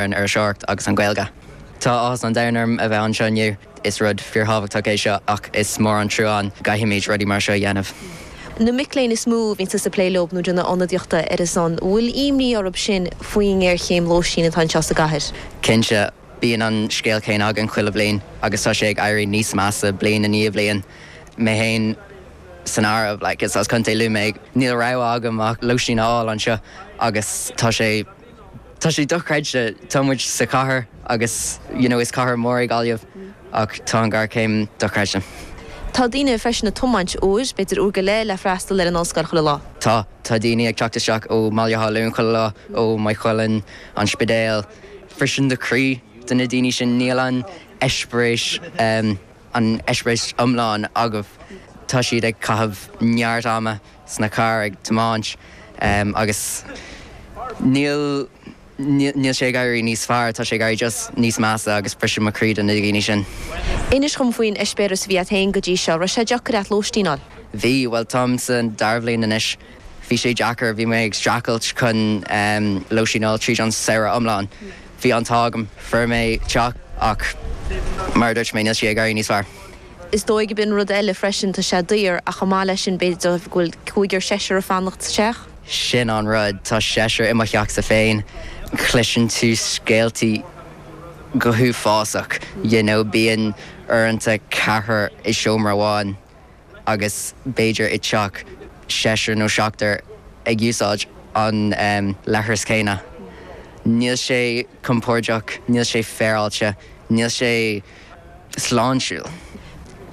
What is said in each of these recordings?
ar an iriseoireacht agus an Ghaeilge. Tá áthas an domhain orm a bheith anseo inniu. Is rud fíorthábhachtach é seo ach is mór an trua go gcaithfimid rudaí mar seo a dhéanamh. Na mic léinn is mó a bhíonn tusa ag plé leo nó ag déanamh ionadaíochta ar a son, bhfuil imní orthu sin faoin ngéarchéim lóistín atá anseo sa gcathair? Cinnte. Bíonn an scéal céanna againn chuile bhliain agus tá sé ag éirí níos measa bliain i ndiaidh bliain. Mé féin san áireamh, like, is as Contae Lú mé, níl rogha agam ach lóistín a fháil anseo agus tá sé. Tá sé dochreidte, tá muid sa chathair agus you know is cathair mór é Gaillimh ach tá an ghéarchéim dochreidte. Tá daoine freisin ag tiomáint uair, b'fhéidir uair go leith le freastal ar an ollscoil chuile lá. Tá, tá daoine ag teacht isteach ó mBaile Átha Luain chuile lá, ó Maigh Chuilinn, An Spidéal, freisin mo chroí do na daoine sin níl an eispéireas. an eispéireas iomlán acu. Tá siad ag caitheamh neart ama sna cairr ag tiomáint agus níl níl sé ag éirí níos fearr, tá sé ag éirí just níos measa agus briseann sé mo chroí do na daoine sin. Inis dhom faoin eispéireas a bhí a't fhéin go dtí seo. Raibh sé deacair a't lóistín a fháil? Bhí, bhuel táim sa dara bhliain anois Bhí sé deacair, bhí mé ag streachailt chun lóistín a fháil tríd an samhradh iomlán. Bhí an t-ádh agam, fuair mé teach ach mar a dúirt mé, níl sé ag éirí níos fearr. Is dóigh go b'in rud eile freisin, tá sé daor ach chomh maith leis sin b'fhéidir go bhfuil cúigear, seisear ag fanacht sa teach. Sin an rud, tá seisear i mo theachsa féin, cloiseann tú scéaltaí go hiomlán uafásach, you know, bíonn uaireanta ceathrar i seomra amháin. agus b'fhéidir i dteach seisear nó seachtar ag úsáid an leithreas céanna. Níl sé compordach, níl sé féaráilte, níl sé sláintiúil.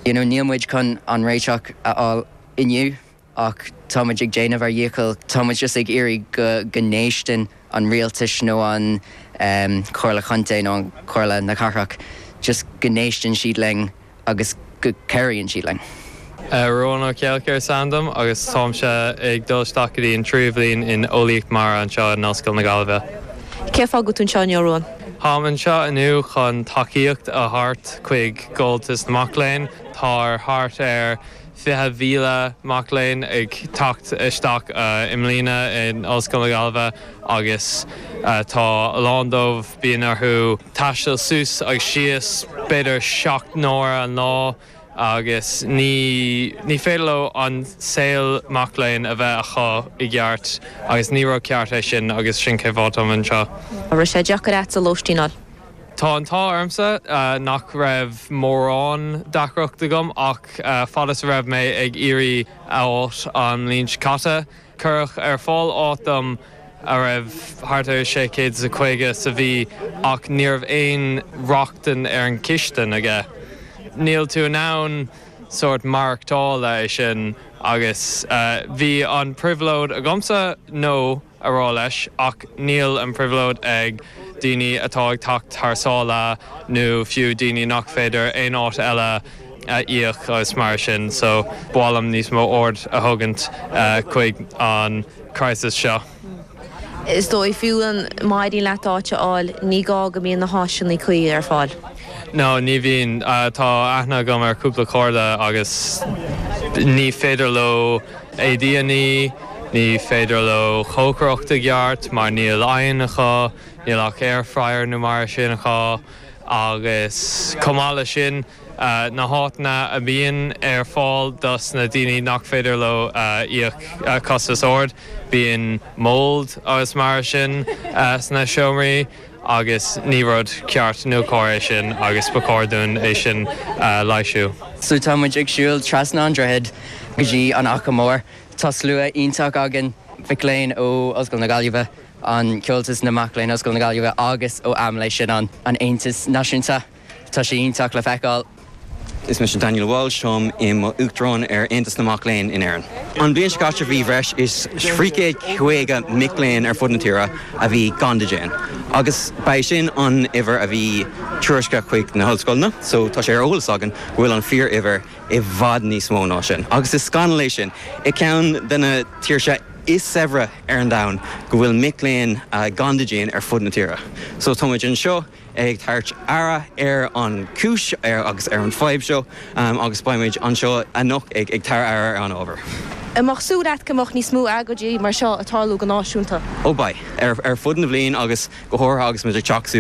You know, níl muid chun an réiteach a fháil inniu ach tá muid ag déanamh ár dhíchill. Tá muid just ag iarraidh go go n-éisteann an rialtais nó an Chomhairle Chontae nó an Chomhairle na Cathrach, just go n-éisteann siad linn. agus go gcabhraíonn siad linn. Ruán Ó Ceallachair is ainm dom agus táimse ag dul isteach go dtí an tríú bhliain in Eolaíocht Mara anseo in Ollscoil na Gaillimhe. Cén fáth go bhfuil tú anseo inniu, Ruán? Táim anseo inniu chun tacaíocht a thabhairt chuig Comhaltas na Mac Léinn. Tá ar thart ar 20,000 mac léinn ag teacht isteach i mbliana in Ollscoil na Gaillimhe agus tá a lán díobh, bíonn orthu taisteal suas agus síos b'fhéidir seacht n-uaire an lá agus ní ní féidir leo an saol mac léinn a bheith acu i gceart agus ní rud ceart é sin agus sin cén fáth táim anseo. An raibh sé deacair a'dsa lóistín a fháil? Tá an t-ádh ormsa nach raibh mórán deacracht agam ach fad is a raibh mé ag iarraidh áit an bhliain seo caite, cuireadh ar fáil áit dom a raibh thart ar 650 sa mhí ach ní raibh aon rochtain ar an chistin aige. Níl tú in ann sórt maireachtáil le sin agus bhí an phribhléid agamsa no. a rá leis, ach níl an phribhléid ag daoine atá ag teacht thar sáile nó fiú daoine nach féidir aon áit eile a íoc agus mar sin, so ba mhaith liom níos mó aird a thabhairt chuig an crisis seo. Is dóigh fiú amháin má éiríonn leat áit a fháil, ní gá go mbíonn na háiseanna cuí ar fáil. No, ní bhíonn. Tá aithne agam ar cúpla cairde agus ní féidir leo. a ndinnéar, Ní féidir leo cócaireacht i gceart mar níl oigheann acu, níl ach air fryer nó mar sin acu agus chomh maith le sin na háiteanna a mbíonn ar fáil dos na daoine nach féidir leo íoc costas ró-ard, bíonn mould agus mar sin sna seomraí. agus ní rud ceart nó cóir é sin agus ba chóir dúinn é sin a leighsiú. So tá muid ag siúl trasna an droichead go dtí an Achadh Mór. Tá slua iontach againn, mic léinn ó Ollscoil na Gaillimhe, an Comhaltas na Mac Léinn Ollscoil na Gaillimhe agus ó Amlé, sin an Aontas Náisiúnta. Tá sé iontach le feiceáil. Is mise Daniel Walsh. Táim i mo Uachtarán ar Aontas na Mac Léinn in Éirinn. An bhliain seo caite bhí breis is trí chéad caoga mic léinn ar fud na tíre a bhí gan dídean agus ba é sin an uimhir a bhí tuairiscthe chuig na hollscoileanna so tá sé ar eolas againn go bhfuil an fíor uimhir i bhfad níos mó ná sin agus is scannal é sin i ceann de na tíortha is saibhre ar an domhan go bhfuil mic léinn gan dídean ar fud na tíre so táimid anseo ag tarraingt aird ar an gcúis agus ar an bhfadhb seo agus beimid anseo anocht ag tarraingt aird ar an ábhar. An mbeadh súil leat go mbeadh níos mó agóidí mar seo ag tarlú go náisiúnta? Ó beidh. Ar fud na bhliain agus go háirithe agus muid ag teacht